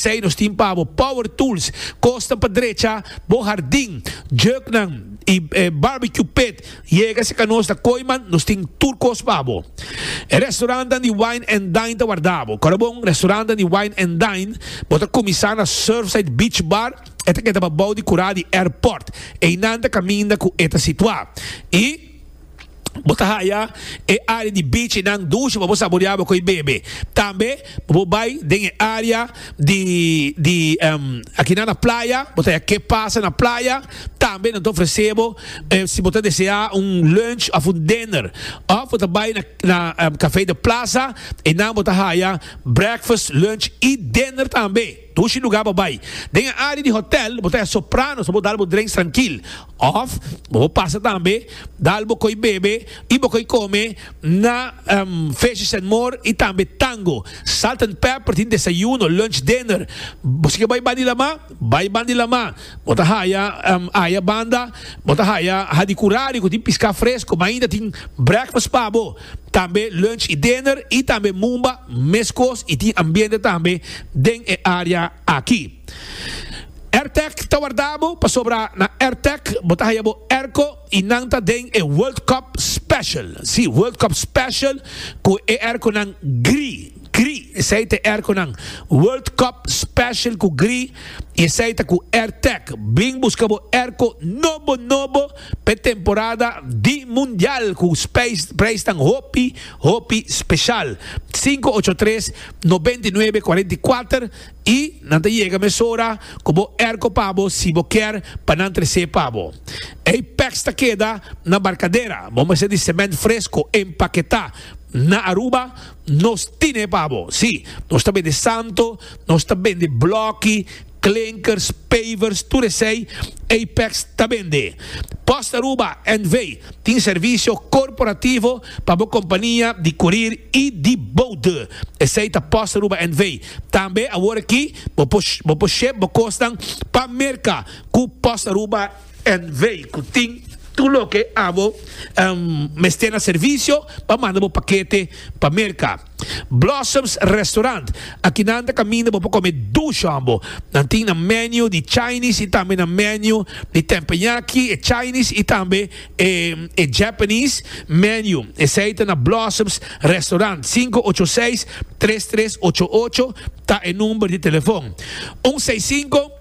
Esei nos tin pa bo, power tools, kosnan pa drecha bo hardin, juknan i barbecue pit. Yega si ka nos ta koi man nos tin tur kos pa bo. E restaurantnan di wine and dine ta warda bo. Kora bon restaurantnan di wine and dine bo ta kuminsá na Surfside Beach Bar, e ta keda pa bou di kurá di airport. Einan ta kaminda ku e ta situá. I. Bo ta haya e área di bichinan dushi pa bo saboreá bo ku e bebe. Tambe bo por bai den e área di di akinan na playa, bo ta haya ke pasa na playa. Tambe nan ta ofresé bo si bo ta deseá un lunch òf un dinner. Òf bo ta bai na na Café de Plaza, einan bo ta haya breakfast, lunch i dinner tambe. Dushi lugar bo bai. Den e área di hotèl bo ta haya sopranos pa bo dal bo drenks trankil. Òf bo por pasa tambe dal bo koi bebe i bo koi kome na Fishes and More i tambe Tango. Salt and Pepper tin desayuno, lunch, dinner. Bo si ke bai bandi Lamá, bai bandi Lamá. Bo ta haya aya banda bo ta haya Hadi Curari ku tin piská fresko. Mainta tin breakfast pa bo. tambe lunch y dinner y tambe mumba mescos y tin ambiente tambe den e area aki. Airtech ta wardabo pasobra na Airtech bo ta haya bo airco y nan ta den e World Cup Special, si World Cup Special cu e airconan gri, gri esey ta e airconan World Cup Special cu gri y esey ta cu Airtech. Bring busca bo airco nobo, nobo. p'e temporada di Mundial ku preisnan hopi hopi speshal. Sinku ocho tres nobenta i nuebe kuarenta i kuater i nan ta yega mesora ku bo erko pa bo si bo kier pa nan tres'é pa bo. Ei pèks ta keda na barkadera, bo mester di semènt fresko empaketá na Aruba. Nos tin e babo, si, nos ta bende santo, nos ta bende blòki, klinkers, pavers, tur esei, Apex ta bende. Post Aruba NV. tin servisio korporativo pa bo kompania di kurir i di boude. Esei ta Post Aruba NV. Tambe awor aki bo por ship bo kosnan pa Merka ku Post Aruba. en vei cu tin tur loke abo mester na servicio pa manda bo pakete pa Merca. Blossoms Restaurant, Aki nan ta caminda bo pa come dush hombo. Nan tin nan menu di Chinese y tambe nan menu di tempeñaki, e Chinese y tambe e Japanese menu. Esey ta na Blossoms Restaurant. Sinku ocho seis tres tres ocho ocho ta e number di telefon. Un seis sinku.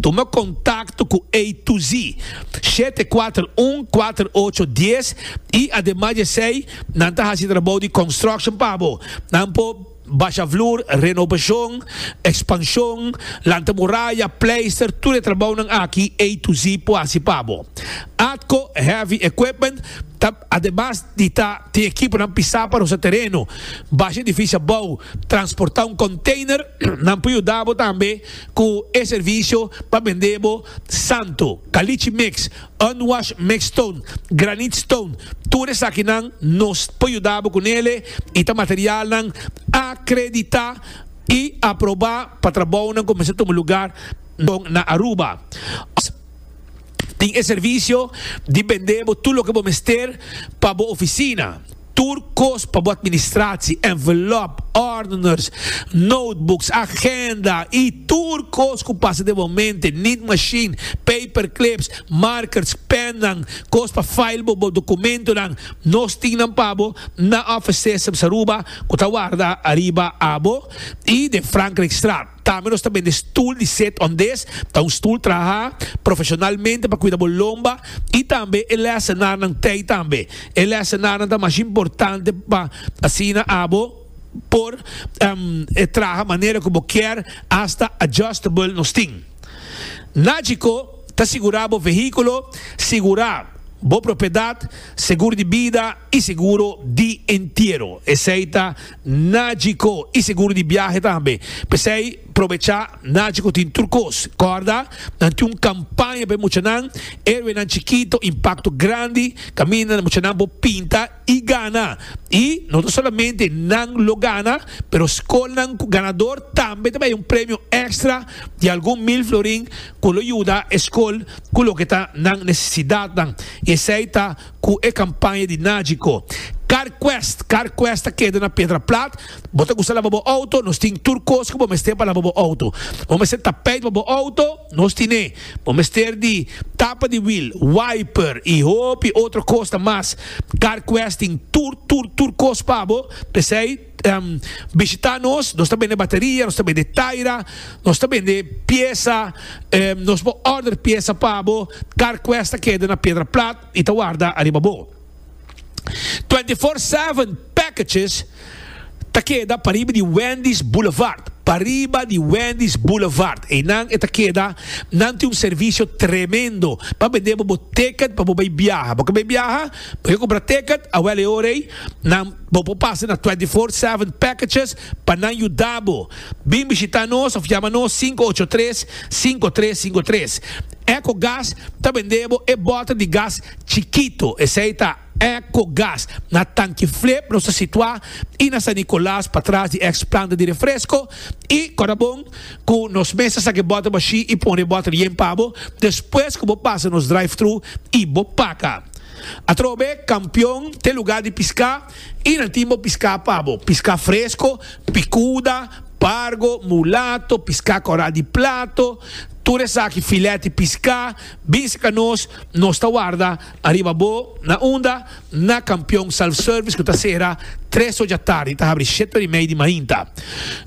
Tuma kontakto ku A to Z shete kuater un kuater ocho dies i ademas di esei nan ta hasi trabou di construction pa bo. Nan por basha vloer, renobashon, ekspanshon, lanta moraya, pleister, tur e trabounan aki A to Z por hasi pa bo. Atco Heavy Equipment ta ademas di ta tin ekiponan pisá pa rosa tereno, basha edifisio abou, transportá un konteiner, nan por yuda bo tambe. cu e servicio pa bende bo santo, caliche mix, unwash mix stone, granite stone, tur esakinan nos por yuda bo cu nele y ta materialnan acredita y aproba pa trabounan cu mester tuma lugar na Aruba. Tin e servicio di bende bo tur loke bo mester pa bo oficina. Tur cos pa bo administratie, envelop, ordeners, notebooks, agenda y tur cos cu pasa den bo mente, need machine, paperclips, markers, pennan, cos pa file bo bo documentonan, nos tin nan pa bo na Office Systems Aruba cu ta warda ariba abo y den Frankrijkstraat. Tambe nos ta bende stul di set on des, ta un stul traha profesionalmente pa kuida bo lomba y tambe e lesenarnan tey tambe. E lesenarnan ta mas importante pa asina abo por traha manera cu bo kier, hasta adjustable nos tin. Nagico ta sigura bo vehiculo, sigura bo propiedad, segur di bida y seguro di entiero. Esey ta Najico y seguro di biahe tambe. P'esey probecha Najico tin tur cos. Corda, nan tin un campaña pa e muchanan, Héroenan Chikito, Impacto Grandi, caminda muchanan por pinta y gana. Y no ta solamente nan lo gana, pero scolnan cu ganador tambe ta bay un premio extra di algun mil florin cu lo yuda e scol cu loke ta nan necesidadnan. Y esey ta. Cu e campaña di Nagico. Carquest, Carquest ta keda na Pedra Plat. Bo ta gusta laba bo auto? Nos tin tur cos cu bo mester pa laba bo auto. Bo mester tapijt pa bo auto? Nos tin'e. Bo mester di tapa di wiel, wiper y hopi otro cosnan mas. Carquest tin tur, tur, tur cos pa bo. P'esey. Em bishita nos, nos ta bende bateria, nos ta bende taira, nos ta bende piesa, em nos bo order piesa pa bo, car quest ta keda na Piedra Plat y ta warda ariba bo. Twenty Four Seven packages ta keda pariba di Wendy's Boulevard, pariba di Wendy's Boulevard, eynan e ta keda, nan tin un servicio tremendo pa bende bo bo ticket pa bo bay biaha, bo ke bay biaha, bo ke compra ticket, awel e ora ey, Nan bo por pasa na twenty four seven packages pa nan yuda bo. Bin bishita nos of yama nos sinku ocho tres, sinku tres sinku tres. Eco Gas ta bende bo e bota di gas chikito, esei ta Eco Gas. Na Tanki Flip nos ta situa i na San Nicolas patras di ex planta di refresco i Corabon cu nos mes ta saca e bota bashi i pone e bota yen pa bo despues cu bo pasa nos drive-thru i bo paca. Atrobe kampion te lugá di piská i nan tin bo piská pa bo, piská fresko, pikuda, pargo, mulato, piská kòrá di plato, tur esaki filèt di piská, bin sika nos, nos ta warda ariba bo. Na unda? Na kampion Self Service ku ta sera tres ocha tardi i ta habri shete ora i mei di mainta.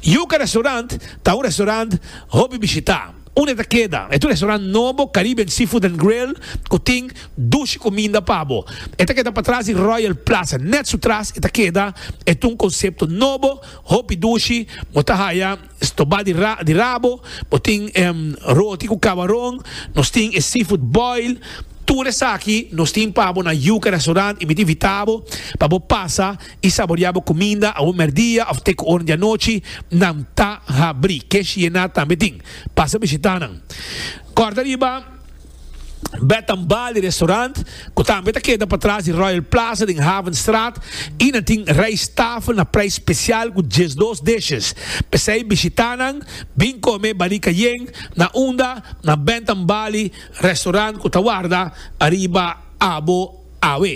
Yuka Restaurant ta un restaurant hopi bishitá. Un e ta keda e tu restaurant nobo Caribbean Seafood and Grill ku tin dushi kuminda pa bo. E ta keda patras di Royal Plaza. Nèt su tras e ta keda e tun konsepto nobo, hopi dushi, bo ta haya stobá di ra di rabo, bo tin roti ku kabaron, nos tin e seafood boil, tur esaki nos tin pa bo na Yuca Restaurant y mi ta invitá bo pa bo pasa i saboreá bo kuminda awe mèrdia òf te ku oren di anochi, nan ta habrí. Ke Shiena tambe tin. Pasa bishitá nan. Kòrda riba Bet and Bali Restaurant, ku tambe ta keda patras di Royal Plaza den Havenstraat i nan tin rijsttafel na preis spesial ku diesdos dishes. P'esei bishitá nan, bin kome Bali Cayenne na unda na Bet and Bali Restaurant ku ta warda ariba abo awe.